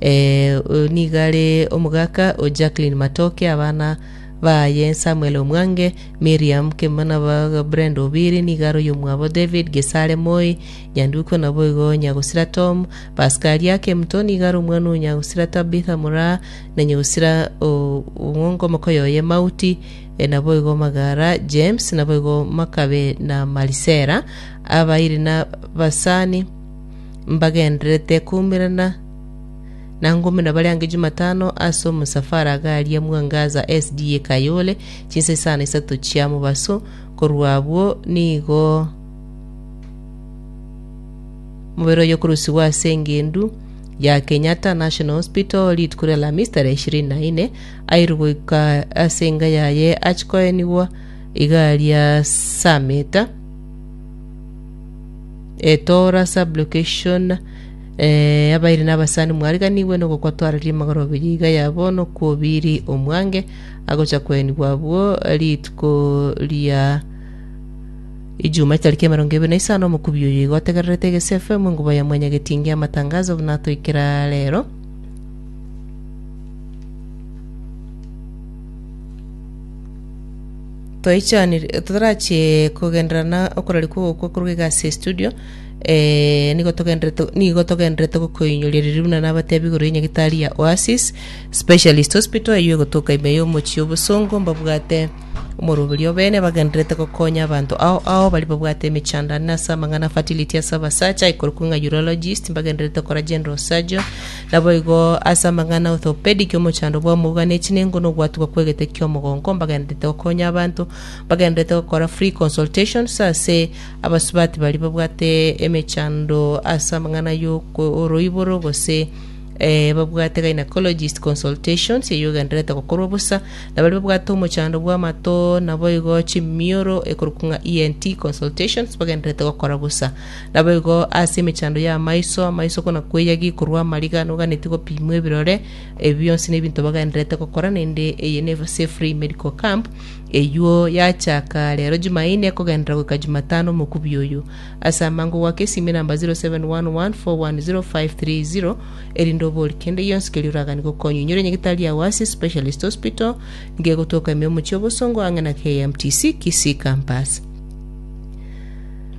Eh, oyo nigo are omogaka o Jacqueline Matoke, abana baye Samuel Omwange, Miriam Kemana baga Brenda Obiri, nigo are oyomwabo David Gesare Moi, Nyanduko naboigo Nyagosira Tom, Paskaria Kemto nigo are omwana o Nyagosira Tabitha Moraa, na Nyagosira o- Ong'ongo omokoyo oye Mauti, eh, naboigo Magara James, naboigo Makabe na Marisera, abairi na basani mbagendererete koumerana na ngumi na baria ange Jumatano ase omosafara iga aria Mwangaza SDA Kayole, chinsa isano isato chia mobaso, korwa abwo nigo mobere oye okorusigwa ase engendu ya Kenyatta National Hospital rituko ria Alhamisi tarehe ishirini na ine, airwe goika ase enga yaye achikoenigwa iga aria saa meta. Etora Sublocation eh, Abairi na abasani mwariganigwe nogokwa twarari amagoro abiri iga yabo nokwobiri omwange agocha kwenigwa abwo rituko ria Ijuma tariki emerongo ebere na isano omokubi oyo iga otegererete Egesia FM engubo ya mwanya getingi amatangazo buna atoikera rero Toichaniri, totarachie kogenderera na okorari kw'ogokwa korwa iga ase estudio, eh, nigo togenderete, nigo togenderete gokoinyoria riria buna nabatebi igoro y'enyagitari ya Oasis Specialist Hospital eyio egotoka ime y'omochie o Bosongo mbabwate omoroberio o bene bagendererete gokonya abanto ao ao baria babwate emechandane ase amang'ana a fertility ase abasacha, ekorokwa ng'a urologist, mbagendererete gokora general surgeon, Naboigo ase amang'ana a Orthopedic, omochandwa bw'amauga ne chinengo na ogwatigwa kw'egete ki'omogongo, mbagendererete gokonya abanto, mbagendererete gokora free consultations ase abasubati baria babwate emechando ase amang'ana y'oroiboro gose eh, babwate gynecologist consultations eyio egendererete gokorwa bosa, na baria babwate omochando bw'amato, naboigo chimioro ekorokwa ng'a ENT consultations mbagendererete gokora bosa. Naboigo ase emechando y'amaiso amaiso kona kweyagi korwa amariga noganetie gopimwa ebirore. Ebi bionsi nebinto bagendererete gokora naende eye ne Sefrey Medical Camp eyuo yachaka rero Jumaine kogenderera goika Jumatano omokubi oyo. Ase amango goaka esime namba 0711410530 erinde obori kende gionsi keria oragani gokonywa. Inyore nyagitari yao ase Specialist Hospital ngegotoka ime omochie obosongo ang'e na KMTC Kisii Campus.